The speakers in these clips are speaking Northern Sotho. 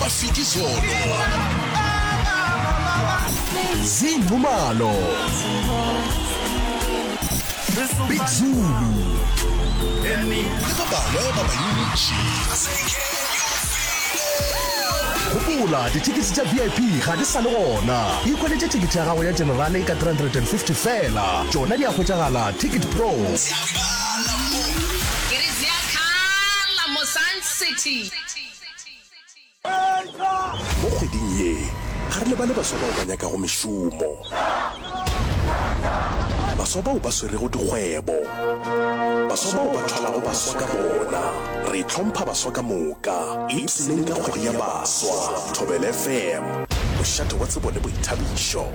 ba fiti sono zing humalo big zulu le ba bangwe ba bantši gopola dithekisi tša vip ga di sa le gona ikweletše thekiti ya gago ya generale ka 350 fela tšona di a hwetšagala ticket pro Mo kgweding ye, ga re lebale baswa bao ba nyakago mešomo, baswa bao ba swerego dikgwebo, baswa bao ba thwalago baswa ka bona. Re hlompha baswa ka moka, ipsneng ka kgwedi ya baswa. Thobelefm, mošate wa tsebo le boithabišo.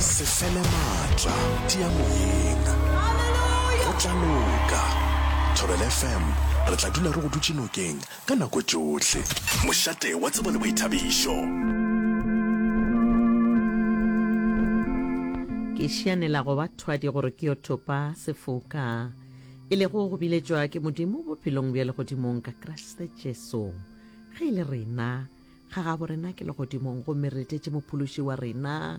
Se fele maatla, tia moyeng. Go tla loka. Thobela FM, re tla dula re go dutše nokeng ka nako tšohle. Mošate wa tsebo le boithabišo. Ke šianela go ba thwadi gore ke yo thopa sefoka, e lego go biletšwa ke Modimo bophelong bja legodimong ka Kriste Jesu. Ge e le rena, Ga gabo rena ke legodimong gomme re tletše Mophološi wa rena,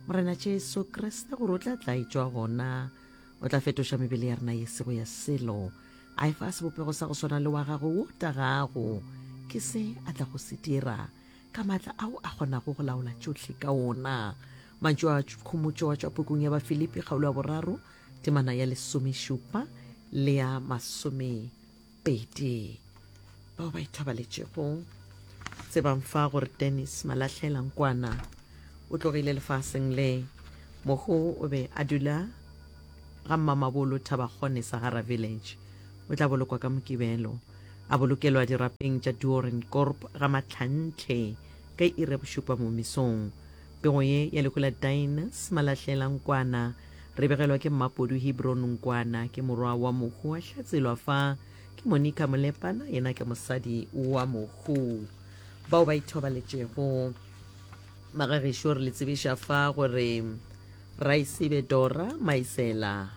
Morena Jesu Kriste, gore o tla tla etšwa gona. O tla fetoša mebele ya rena ye sego ya selo, a e fa sebopego sa go swana le wa gagwe wo tagago. Ke se a tla go se dira ka maatla ao a kgonago go laola tšohle ka ona. Mantšu a khomotšo a tšwa pukung ya Bafilipi kgaolo ya boraro temana ya lesomešupa le ya masome pedi bao ba ithobaletšego tsebang fa gore dennis malahlela nkwana o tlogile lefaseng le mogo o be a dula ga mmamabolo thabakgone sahara village o tla bolokwa ka mokibelo a bolokelwa dirapeng tša duoren corp ga mahlantle ka ire bošupa mo mesong Pego ye ya lehu la Dines Malahlela Nkwana re begelwa ke Mmapodu Hebron Nkwana ke morwa wa mohu a hlatselwa fa ke Monica Molepana yena ke mosadi wa mohu bao ba ithobaletšego magagešo re le tsebiša fa gore Raisebe Dora Maisela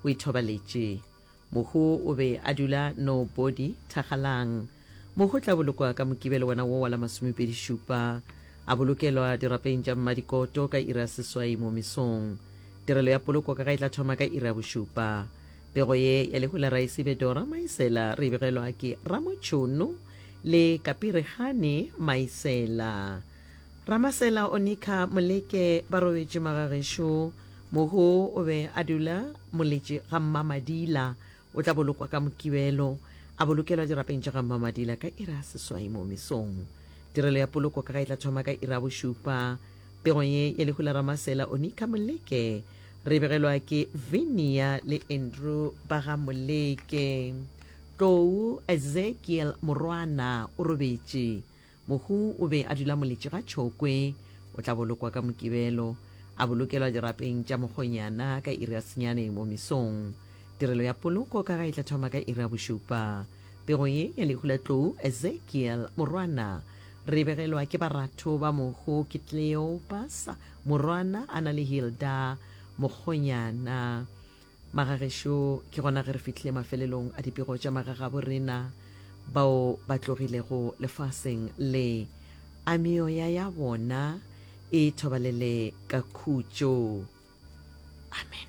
o ithobaletše Mohu o be a dula Nobody, Thakgalang. Mohu o tla bolokwa ka Mokibelo wona wo wa la masomepedi šupa. A bolokelwa dirapeng tša Mmadikoto ka iri ya seswai mo mesong. Tirelo ya poloko ka ga e tla thoma ka iri ya bošupa. Pego ye ya lehu la Raesi Bedora Maisela re e begelwa ke Ramotšhono le Kapirihane Maisela. Ramasela o nikha Moleke ba robetše magagešo. Mohu o be a dula moletše ga Mmamadila. O tla bolokwa ka Mokibelo. A bolokelwa dirapeng tša ga Mmamadila ka iri ya seswai moo mesong. Tirelo ya poloko ka ga e tla thoma ka iri ya bošupa. Pego ye ya lehu la Ramasela o nikha Moleke re e begelwa ke Vinia le Andrew ba ga Moleke. Tlou Ezekiel Morwana o robetše. Mohu o be a dula moletši ga tšhokwe. O tla bolokwa ka Mokibelo. A bolokelwa dirapeng tša mokgonyana ka iri ya senyane mo mesong. Tirelo ya poloko ka ga e tla thoma ka iri ya bošupa. Pego ye ya lehu la tlou, Ezekiel, morwana. Re begelwa ke baratho ba mohu ke Kleopas, morwana, a na le Hilda, mokgonyana. Magagešo, ke gona ge re fihlile mafelelong a dipego tša magagabo rena bao ba tlogilego lefaseng le, a meoya ya bona e thobalele ka khutšo. Amen.